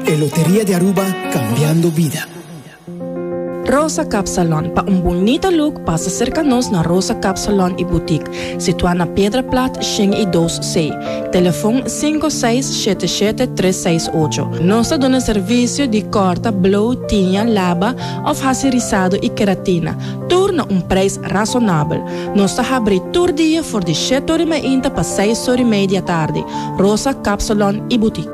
E Loteria di Aruba, Cambiando Vida. Rosa Kapsalon, pa un bunita luk pasa serka nos na Rosa Kapsalon i Butik, situá na Piedra Plat shen i dos C, telefon sinku seis shete shete tres seis ocho. Nos ta duna servisio di kòrta, blow, tiña, laba òf hasi risado i keratina, tur na un preis rasonabel. Nos ta habri tur dia for di shete ori mainta pa seis ori mei di atardi. Rosa Kapsalon i Butik.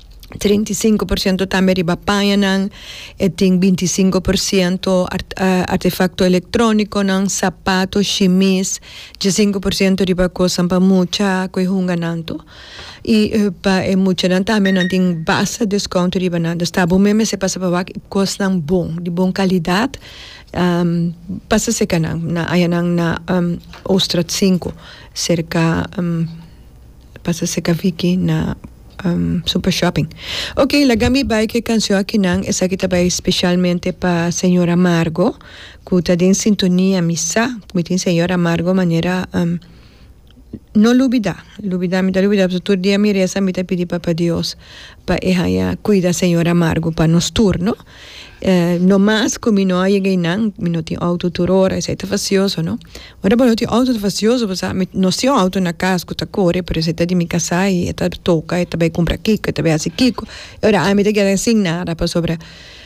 treinta i sinku por siento tambe riba pañanan, e tin binti i sinku por siento artefakto elektrónikonan, sapato, shimis, dje sinku por siento riba kosnan pa mucha ku e hunganan tu. I pa e muchanan tambe nan tin basta deskonto riba nan. Nos ta bo men mester pasa pa wak kosnan bon, di bon kalidat, pasa serka nan, na añanan na Oostraat sinku, serka. pasa seka Vicky na Super Shopping. Ok, laga mi bai ke canción akinan, esaki ta bai specialmente pa Señora Margo, cu ta den sintonia, mi sa cu mi tin Señora Margo manera um, no lubida, lubida, mi ta lubida, pasobra tur dia mi reza mi ta pidi Papa Dios pa e haya cuida Señora Margo pa nos tur, no. No mas cu mi no a yega eynan, mi no tin auto tur ora, esey ta facioso, no? Ora bo no tin auto ta facioso pasobra mi no siy un auto na cas cu ta core, pero esey ta di mi casa y e ta toca, e ta bay cumpra kico, e ta bay haci kico, y ora ami ta keda sin nada pasobra.